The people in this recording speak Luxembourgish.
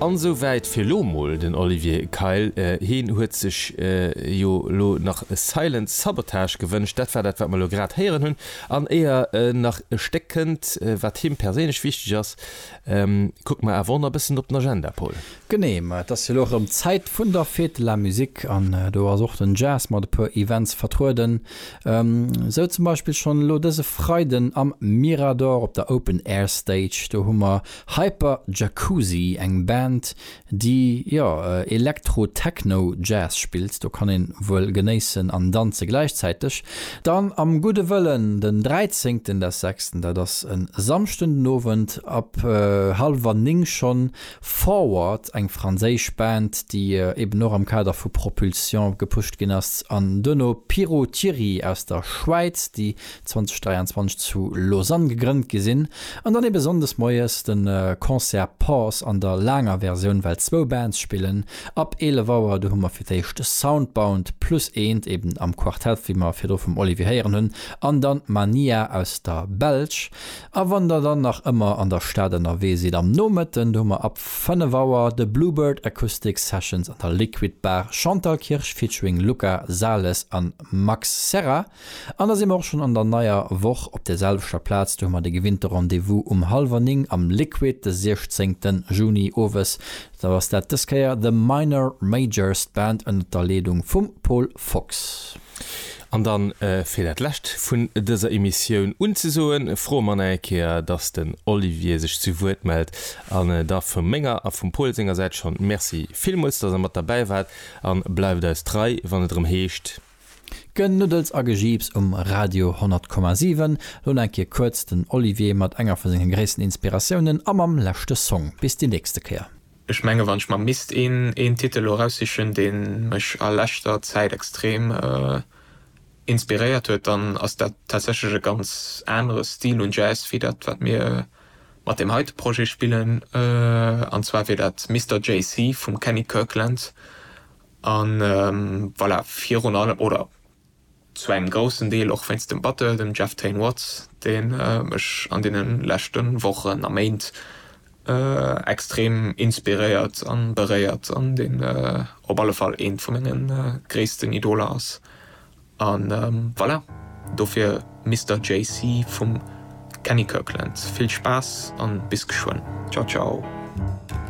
An esou wäit fir elo mol den Olivier Keil. Heen huet sech jo elo nach Silent Sabotage gewënscht. Dat war dat wat mer elo grad héieren hunn. An éier nach e Stéck kënnt wat him perséinlech wichteg ass, kucke mer awer och nach e bëssen op den Agenda Paul. Genee, ma et ass jo elo erëm d'Zäit vun der Fête de la Musique an do ass och den Jazz mat e puer Events vertrueden. Esou zum Beispill schonn elo dëse Freiden am Mirador op der Open Air Stage. Do hu mer Hyper Jacuzzi, eng Band, déi, jo, Elektro-Techno-Jazz spillt. Do kann een wuel genéissen an danze gläichzäiteg. Dann am Gudde Wëllen den 13 des sechsten, dat ass e Samschden den Owend ab hallwer 9 schonn Forward, eng franséisch Band, déi eben och am Kader vu Propulsion gepusht ginn ass, an duerno Piro Thierry aus der Schwäiz, déi 2023 zu Lausanne gegrënnt gi sinn, an dann eben Sonndes moies de Concert Pause an der laanger Versioun, well zwou Bands spillen ab 11 Auer. Du hu mer fir d'éischt Soundbound plus eent, eben am Quartett, wéi mer virdru vum Olivier héieren hunn, an dann Mania aus der Belsch. A wann der dann nach ëmmer an der Stad ënnerwee sidd am Nomëtten, do hu mer ab 5 Auer de Bluebird Acoustic Sessions an der Liquid Bar Chantal Kirsch featuring Luca Sales an Max Serra. An da si mer och schonn an der neier Woch op der selwechter Plaz, do hu mer de gewinnte Rendez-vous um hallwer 9 am Liquid de 16 Juni owes. Da ass dat dës Kéier The Minor Majors, d'Band ënnert der Leedung vum Paul Fox. An dann, fir dat Lescht vun dëser Emissioun unzesoen, froe mer nach eng Kéier, dass den Olivier sech zu Wuert mellt. An da vu menger a vum Paul senger Säit schonn Merci villmools, dass Der mat derbäi waart a bleift eis trei, wann et erëm heescht. Genuddels a Gejiips um Radio 100 Komma 7. Lo nach eng Kéier kuerz den Olivier mat enger vu senge gréissten Inspiratiounen a mam leschte Song. Bis déi nächste Kéier. Ech mengen, wann ech mer misst een Titel lo eraussichen, deen mech a leschter Zäit extrem inspiréiert huet, dann ass dat tatsächlech e ganz anere Stil un Jazz wéi dat wat mir mat deem heite Projet spillen. An zwar wier dat Mister JC vum Kenny Kirkland. An voilà, virun allem, oder Zu engem groussen Deel och wéinst dem Battle, dem Jeff Tain Watts, dee mech an deene leschte Wochen a Méint extrem inspiréiert a beréiert an deen op alle Fall eent vu menge gréissten Idoler ass. A voilà, dofir Mister JC vum Kenny Kirkland. Vill Spaass a bis geschwënn. Ciao ciao.